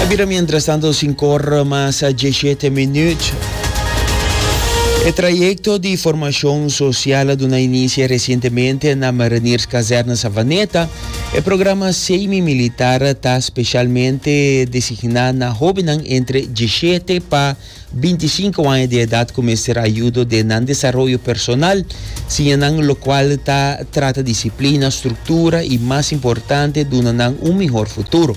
A bira mientras tanto sinkor mas a dieshete minüt. E trayekto di formashon sosial a duna inisie resientemente na Mariniers Kazerne Savaneta. E programa semi militar ta speshalmente designá na hóbennan entre dieshete pa binti i sinku aña di edat ku mester ayudo den nan desaroyo personal, siña nan lokual ta trata disiplina, struktura i mas importante duna nan un mihor futuro.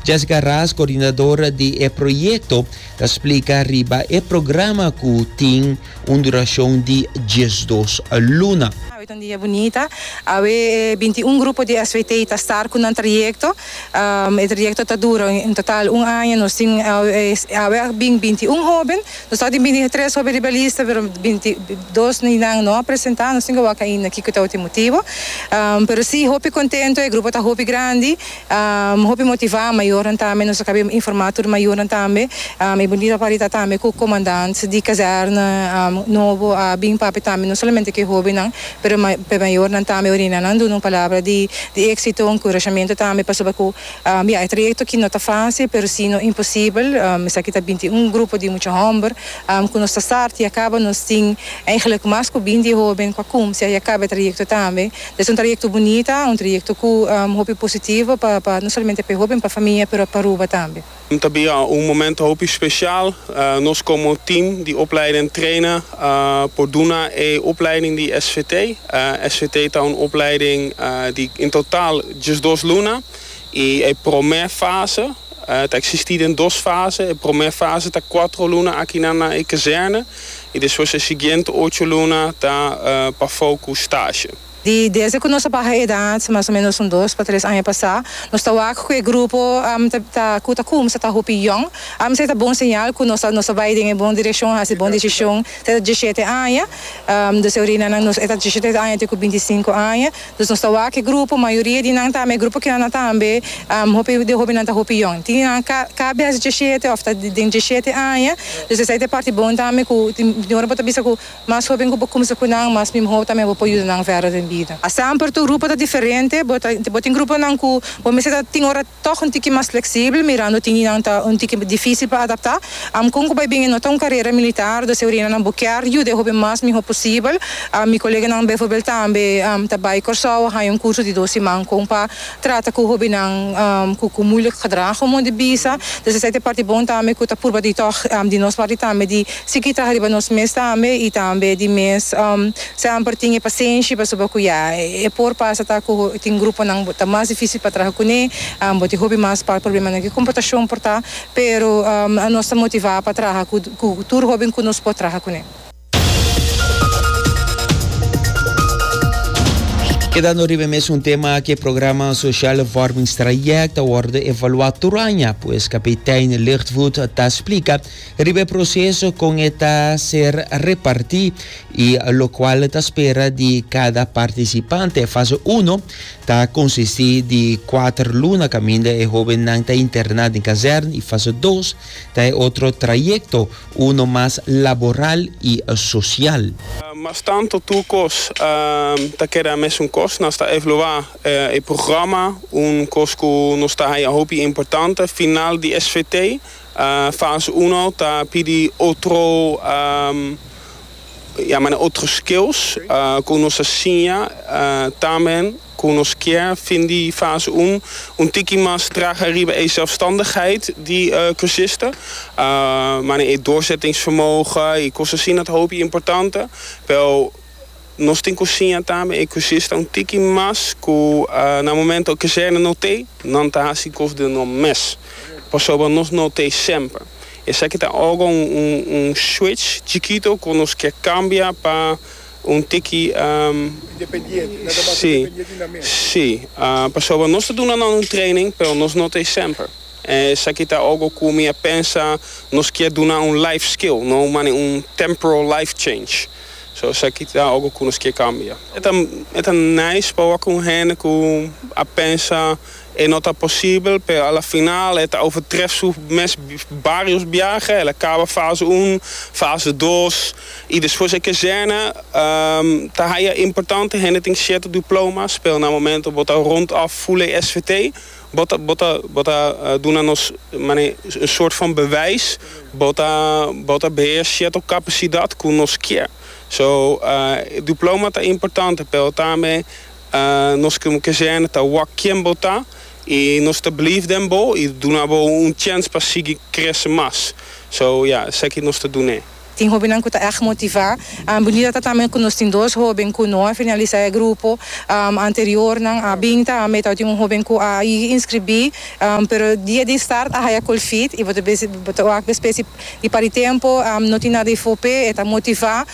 Jessica Ras, koordinador di e proyekto, ta splika riba e programa ku tin un durashon di diesdos luna. Awe ta un dia bunita. Awe e binti i un grupo di SWT ta star ku nan trayekto. E trayecto ta dura en total un aña, nos tin awe a bin binti un hoben, nos staba tin binti tres hoben riba e lista pero binti dos di nan no a presenta, nos tin ke wak ainda kiko tabatin motibo, pero si hopi contento, e grupo ta hopi grandi, hopi motiva, mayornan tambe, nos a kabe informa tur mayornan tambe, e bonido papari ta tambe ku comandant di kazerna nobo a bin papia tambe no solamente ku e hobennan Pero p'e mayornan tambe orina nan duna un palabra di di éksito, un kurashamentu tambe pasobra ku bia e trayekto aki no ta fásil pero si no imposibel. Esaki ta binti un grupo di mucha hòmber ku nos ta sarta ya kaba nos tin eigelik mas ku binti hóben ku a kumsia ya kaba e trayekto tambe. Es un trayekto bunita, un trayekto ku hopi positivo pa no solamente p'e hóben pa famia pero pa Aruba tambe. Ta bira un momento hopi special. Nos como team di opleiding traina por duna e opleiding di SVT. SVT ta un opleiding di in total diesdos luna y e prome fase ta existi den dos fase. E prome fase ta cuatro luna akinan na e kazerne y despues e siguiente ocho luna ta pafou cu stage. Di desde cu nos a baha edad, mas o menos un dos pa tres aña pasá, nos ta wak cu e grupo ta cu ta cumsa ta hopi yong. Esei ta bon señal cu nos ta nos ta bay den e bon direccion, haci bon decision te ta dieschete aña. Nos e orinanan nos e ta dieschete aña te cu binti sinku aña. Dus nos ta wak e grupo, mayoria di nan ta ama e grupo kinan na tambe hopi de hopinan ta hopi yong. Tin di nan ka ka bias dieschete of ta den dieschete aña. Dus esei ta e parti bon tambe cu tin tin ora bo ta bisa cu Mas hoben ku bo kumsa ku nan, mas mihó tambe bo por yuda nan vèrdè den bida. Esemper, Tur grupo ta diferente. Bo ta bo tin gruponan ku bo mester ta tin ora tòg un tiki mas fleksibel, mirando tin dinan ta un tiki difísil pa adaptá. Am kon ku bai bin e no ta un karera militar, do seu reina nan bo kier yuda e hoben mas mihó posibel. Mi koleganan bèfòrbèl tambe ta bai Kòrsou a haña un kurso di dos siman kon pa Trata cu hobennan cu cu moeilijk gedrag como di bisa, dus esaki ta e parti bon tambe cu ta purba di tog di nos parti tambe di sigui ta riba nos mes tambe y tambe di mes semper tin e pasenshi pasobra cu ya e por pasa ta cu tin gruponan bo ta mas dificil pa traha cune bo tin hopi mas par problemanan cu e comportacion por ta pero nos ta motiva pa traha cu tur hoben cu nos por traha cune. Kedando riba e mesun tema aki, e programa Sociale Vormingstraject a wordo evaluá tur aña. Pues kapitein Lightfoot ta splika riba e proseso kon e ta ser repartí i lokual ta spera di kada partisipante. Fase uno ta konsistí di kuater luna kaminda e hóbennan ta interná den kazèrn i fase dos ta e otro trayekto Uno mas laboral y social. Mas tanto tur cos ta keda mesun cos. Nos ta evalua e programa, un cos cu nos ta haya hopi importante. Final di SVT, fase uno ta pidi otro, ya mane otro skills cu nos ta siña tambe. ku nos kier fin di fase un un tiki mas traha riba e sèlfstandigheid di kursista. Manera e doorzettingsvermogen i kos asina ta hopi importante, pero nos tin ku siña tambe e kursista un tiki mas ku na momento e kazerna no t'ei, nan ta hasi kos den nan mes, pasobra nos no t'ei semper. Esaki ta ora un switch chikito ku nos kier kambia pa. Un tiki, si, si. Pasobra nos ta duna nan un training, pero nos no ta e semper. Esaki ta algo ku mi a pensa nos kier duna un life skill, no un mane un temporal life change. So esaki ta algo ku nos kier kambia. E ta nice pa wak ku un hende ku a pensa. E no ta posibel, pero a la final e ta overtref su mes barios biaha. El a caba fase un, fase dos y despues e kezena ta haya importante. Hende tin cierto diplomas, pero na momento bo ta rond off full e SVT, bo ta bo ta bo ta duna nos mane un soort van bewijs. Bo ta bo ta beheer cierto capacidad cu nos kier. So, diploma ta importante, pero tambe Nos krim ke jèn ta wak ken bo ta i nos ta bleef den bo i duna bo un chèns pa sigui krese mas. So ya, esaki nos ta dun'é. Tin hóbennan ku ta èg motivá. Bonita ta tambe ku nos tin dos hóben ku no a finalisá e grupo anteriornan. A bin ta ambien tabata tin un hóben ku a inskribí, pero dia di start a haya kolfit i bo ta wak bespes si Di pari tempo no tin nada di fope e ta motiva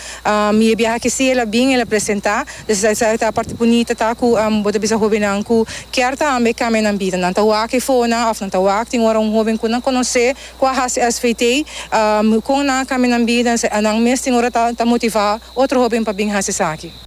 mi e biaha ki si el a bin el a presenta dus esa ta parti bunita ta ku bo ta bisa hobennan ku kier ta hambia e kambia nan bida nan ta wak e fonan of nan ta wak tin ora un hoben ku nan konosé ku a hasi svt kon nan a kambia nan bida nan mes tin ora ta motiva otro hoben pa bin hasi esaki.